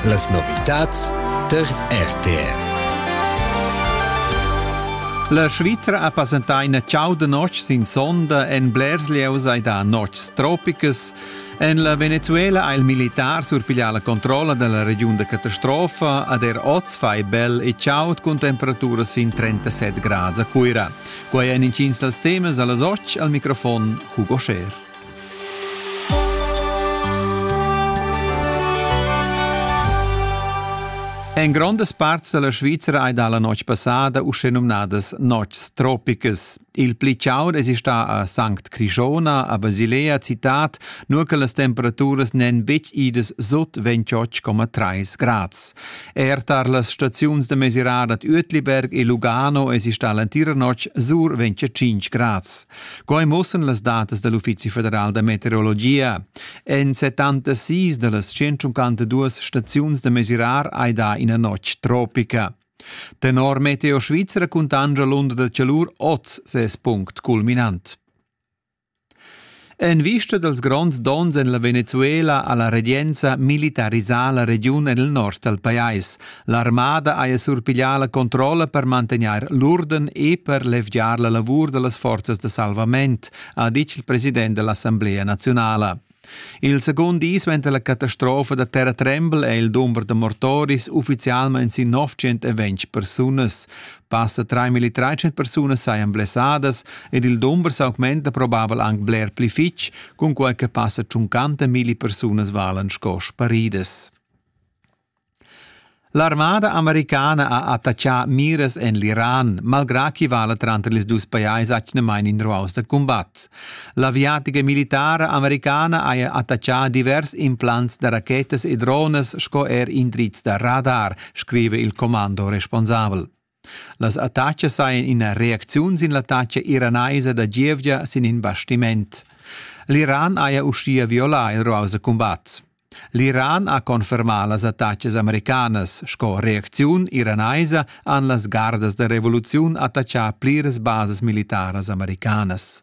Las novitads tar RTR. La Svizra ha passentà ina chauda notg sin sonda en blers lieus hai da notgs tropicas. En la Venezuela ha il militar surpiglià la controlla della regiun da catastrofa ad er oz fai bel e chaud cun temperaturas fin 37 grads a Cuira. Quai èn intgins dals temas a las 8 al microfon Hugo Scher. En grondas parts dalla Svizra ei dalla notg passada uschenumnadas notgs tropicas. Il pli chaud es sta a Sankt Crishona, a Basilea citat, nur che las temperaturas n'en betg idas sut 28,3 grads. Er tar las staziuns da mesirar ad Uetliberg e Lugano es sta l'entira notg sur 25 grads. Quai muossan las datas da l'Uffizi federal da meteorologia. En 76 da las 152 staziuns da mesirar hai dà ina notg tropica. Tenor Meteo Svizra cuntancia l'unda da chalur oz ses punct culminant. En vista dels gronds dons en la Venezuela ha la regenza militarisà la regiun en il nord dal pajais, L'armada haja surpiglià la controlla per mantegnair l'urden e per levgiar la lavur da las forzas da salvament, ha ditg il president dell'Assemblea naziunala. Il secund di suenter la catastrofa da terratrembel è il dumber da mortoris uffizialmain sin 920 persunas. Passa 3.300 persunas sajan blessadas ed il dumber s'augmenta probabel anc bler pli fitg, cunquai che passa 50.000 persunas valan sco sparidas. L'armada americana ha attaccà miras en l'Iran, malgrà ch'i vala tranter ils dus pajais atgnamain in ruaus da cumbat. L'aviatica militara americana haja attaccà divers implants da rachetas e dronas sco er indrizs da radar, scriva il commando responsabel. Las attatgas sajan ina reacziun sin l'attatga iranaisa da gievgia sin in bastiment. L'Iran haja uschia violà il ruaus da cumbat. L'Iran ha confermà las attatgas americanas. Sco reacziun iranaisa han las gardas da revoluziun attaccà pliras basas militaras americanas.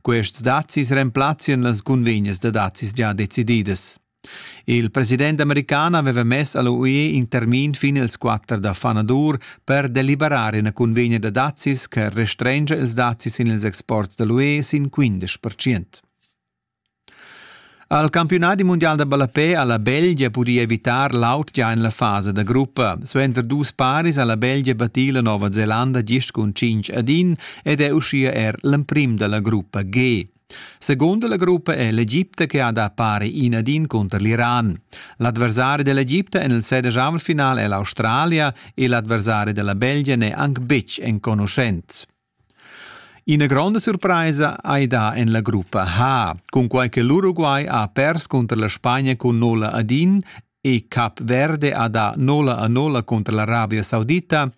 Quests dazis remplazzian las cunvegnas da dazis gia decididas. Il president american aveva mess all'UE in termin fin ils 4 da fanadur per deliberar ina cunvegna da dazis che restrengia ils dazis sin ils exports da l'UE sin 15%. Al campiunadi mundial da ballapè ha la Belgia pudì evitar l'aut gia en la fasa da gruppa. Suenter dus paris ha la Belgia battì la Nova Zelanda gist cun cinc ad in ed è uschia er l'emprim da la gruppa G. Seconda la gruppa è l'Egipte che ha da pari in ad in cunter l'Iran. L'adversari dell'Egipte en il sedicavel-final è l'Australia e l'adversari della Belgia n'è anc betg enconuschent. Ina gronda surpraisa ei da en la gruppa H, cunquei che l'Uruguay ha pers cunter la Spagna cun nolla ad in e Cap Verde ha dà nolla a nolla cunter l'Arabia Saudita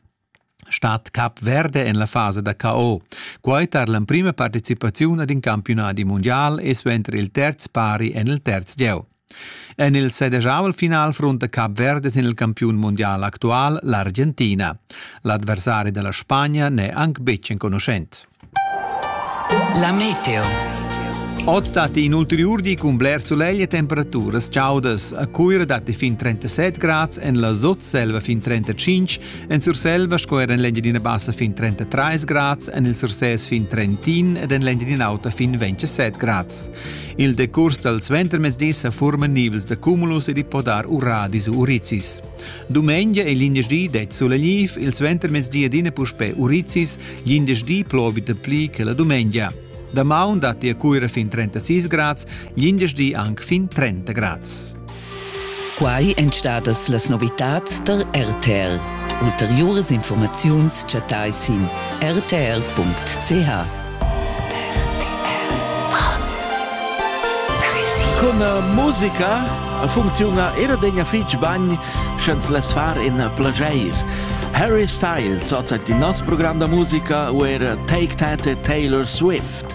stat Cap Verde en la fasa da KO. Quai tar l'emprima participaziun ad in campiunadi mundial e suenter il terz pari en il terz gieu. En il sedegiavel final frunta Cap Verde sin il campiun mundial actual, l'Argentina. L'adversari della Spagna n'è anc betg enconuschent. La meteo. Oz datti in ulteriur di cun bler sulegl e temperaturas chaudas. A Cuira datti fin 37 grads, en la Sotselva fin 35, en Surselva sco er en l'Engiadina Bassa fin 33 grads, en il Sursès fin 31 ed en l'Engiadina Auta fin 27 grads. Il decurs dal suentermezdi sa furman nivels da cumulus ed i po dar uradis u urizis. Dumengia e l'indersdi det sulegniv, il suentermezdi adina puspè urizis, l'indersdi plovi da pli che la dumengia. Damaun datti a Cuira fin 36 grads, l'indersdi anc fin 30 grads. Quai èn stadas las novitads tar RTR. Ulteriuras informaziuns chattai sin rtr.ch. Con musica funcziuna era degna fitg bagn sch'ens less far in plageir. Harry Styles, ozza di nos program da musica, uer Take That e Taylor Swift.